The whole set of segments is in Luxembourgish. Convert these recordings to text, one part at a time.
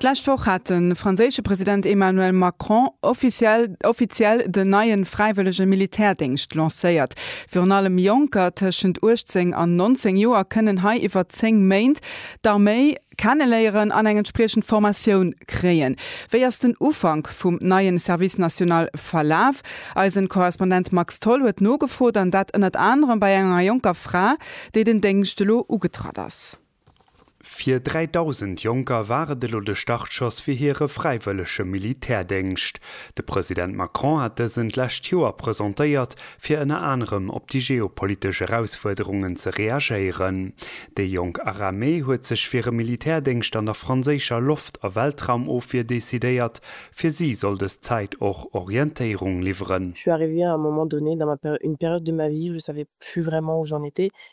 D'lescht Woch hat de franséische President Emmanuel Macron offiziell offiziell den neien fräiwëllege Militärdéngscht lancéiert. Virun allem Jonker tëschent 18 an 19 Joer kënnen hei iwwer 10 Méint d'Arméi kenneléieren an eng entspriechend Formatioun kréien. Wéi ass den Ufank vum neien Service national verlaf? Eisen Korrespondent Max Tholl huet nogefrot an dat ënnert anerem bei enger jonker Fra, déi den Déngscht elo ugetratt ass. Fir 3.000 Jonker war et elo de Startschoss fir hire fräiwëllege Militärdéngscht. De President Macron hat dësen d'lescht Joer presentéiert, fir ënner anerem op déi geopolitesch Erausfuerderungen ze reagéieren. Déi jonk Aramee huet sech fir e Militärdéngscht an der franséischer Loft a Weltraumofwier decidéiert. Fir si soll dës Zäit och Orientéierung liwweren. Je suis arrivée à un moment donné dans ma une période de ma vie où je savais plus vraiment où j'en étais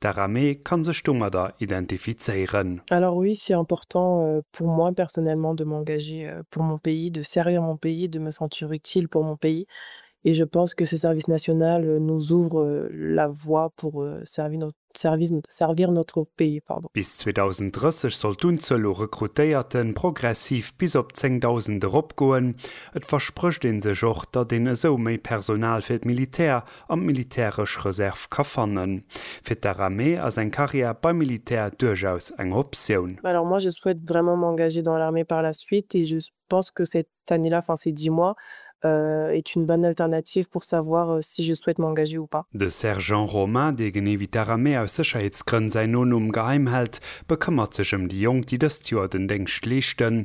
D'Aramee kann sech domadder identifizéieren. Alors oui, c'est important pour moi personnellement de m'engager pour mon pays, de servir mon pays, de me sentir utile pour mon pays et je pense que ce service national nous ouvre la voie pour servir notre pays. Bis 2030 soll d'Unzuel u Rekrutéierte progressiv bis op 10.000 eropgoen. Et versprécht ee sech och, datt een esou méi Personal fir d'Militär an d'militäresch Reserv ka fannen. Fir d'Aramee ass eng Carrière beim Militär duerchaus eng Optioun. Mais alors moi je souhaite vraiment m'engager dans l'armée par la suite et je pense que cette année là, enfin ces dix mois, est une bonne alternative pour savoir si je souhaite m'engager ou pas. De Sergent Romain, dee genee wéi d'Aramee aus Sécherheetsgrënn säin Nonumm geheim hält, bekëmmert sech ëm déi Jonk, déi dëst Joer den Déngscht leeschten.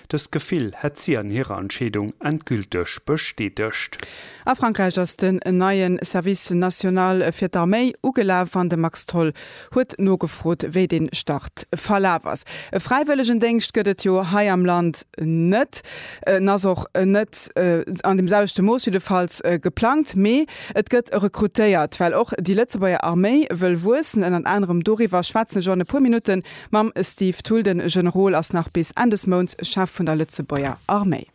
Dëst Gefill hätt si an hirer Entscheedung endgülteg bestätegt. A Frankräich ass den neie Service national fir d'Arméi ugelaf an de Max Tholl huet nogefrot, wéi dee Start verlaf ass. E Fräiwëllegendéngscht gëtt et jo hei am Land net. En ass och net an deem selwechte Mooss jiddefalls geplangt. Mee et gëtt rekrutéiert, well och déi Lëtzebuerger Arméi wëll wuessen. Ënnert anerem doriwwer schwätzen ech och an e puer Minutten Mam Steve Thull, de Generol ass nach bis Enn des Mounts Chef vun der Lëtzebuerger Arméi.